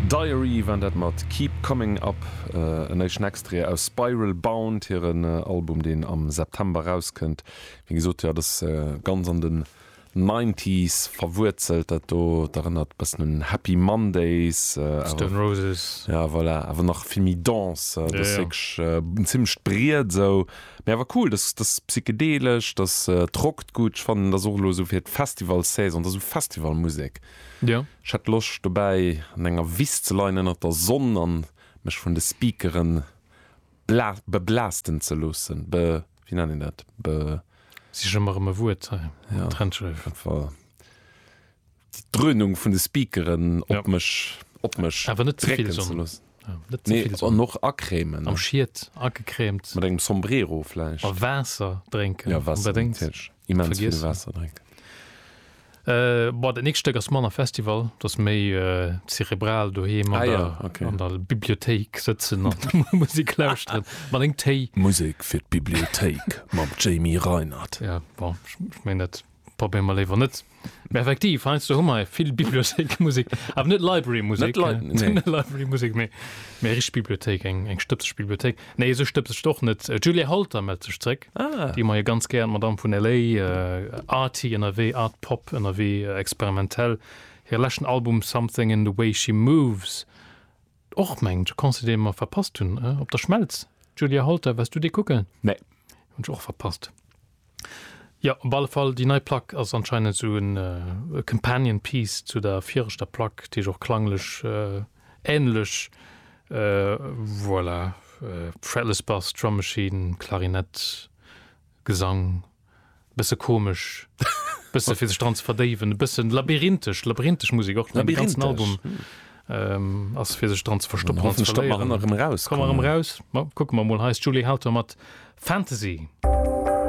Diary waren dat mat Keep Coming Up. En éischten Extrait aus Spiral Bound, hiren Album deen am September erauskënnt. Wéi gesot jo, dat ass ganz an den Nineties verwuerzelt dat do. Et erënnert e bëssen un Happy Mondays awer, ja voilà, awer nach vill méi Dance. Dat ass wierklech en zimmlecht Briet esou. Mee awer cool, dass dass psychedelesch, dass et rockt gutt. Ech fannen dass och elo esou fir d'Festivalsaison, dass esou Festivalmusek. Jo. Ech hätt Loscht dobäi an enger Wiss ze leien ënnert der Sonn an mech vun de Speakeren bla beblasten ze loossen, be wéi nennt een dat, be. Sich emmer erëm e Wuert hei, ja, Trenchel. Op jeden Fall. d'Dröhnung vun de Speakeren op mech op mech awer net ze vill Sonn net ze vill Sonn och acrémen am Schiet agecrémt mat engem Sombrero vläicht a Waasser drénken ja Waasser natierlech immens vill Waasser drénken. Euh, bon, dat nächst Stéck ass manner Festival, dat ass méi euh, zerebral doheem an, ah, ja, okay. an der Bibliothéik sëtzen an Musik lauschteren. Mat eng Téi. Musek fir d'Bibliothéik mam Jamie Reinert. Ja, bon, ich, ich mein net. Probéiere mer léiwer net. Mä effektiv, heiansdo hu mer vill Bibliothéikmusek, awer net Librarymusek, net Lib-, nee. net Librarymusek, mee, mee richteg Bibliothéik, eng, eng stëbseg Bibliothéik. Nee, esou stëbseg och net. D'Julia Holter mellt sech zréck, Ah. déi mer jo ganz gär, d'Madame vun LA, äh, arty ënnerwee, art pop ënnerwee, experimentell. Hire leschten Album Something in the Way She Moves. Och mengt Conseil dee mer verpasst hunn op der Schmelz. Julia Holter, wars du dee kucken? Nee. Hunn ech och verpasst. Jo, op alle Fall déi nei Plack ass anscheinend sou en companion piece zu der viirechter Plack, déi ech och klanglech ähnlech voilà, fretless Bass, Drum Machine, Klarinett, Gesang. e bësse komesch, e bësse fir sech dran ze verdéiwen, e bëssen labyrinthesch, labyrinthesch Musik och, den ganzen Album ass fir sech dran ze verstoppen an ze verléieren. Hoffentlech da mer erëm eraus. Komme mer erëm eraus, ma kucke mer emol. Hei ass d'Julie Howter mat Fantasy.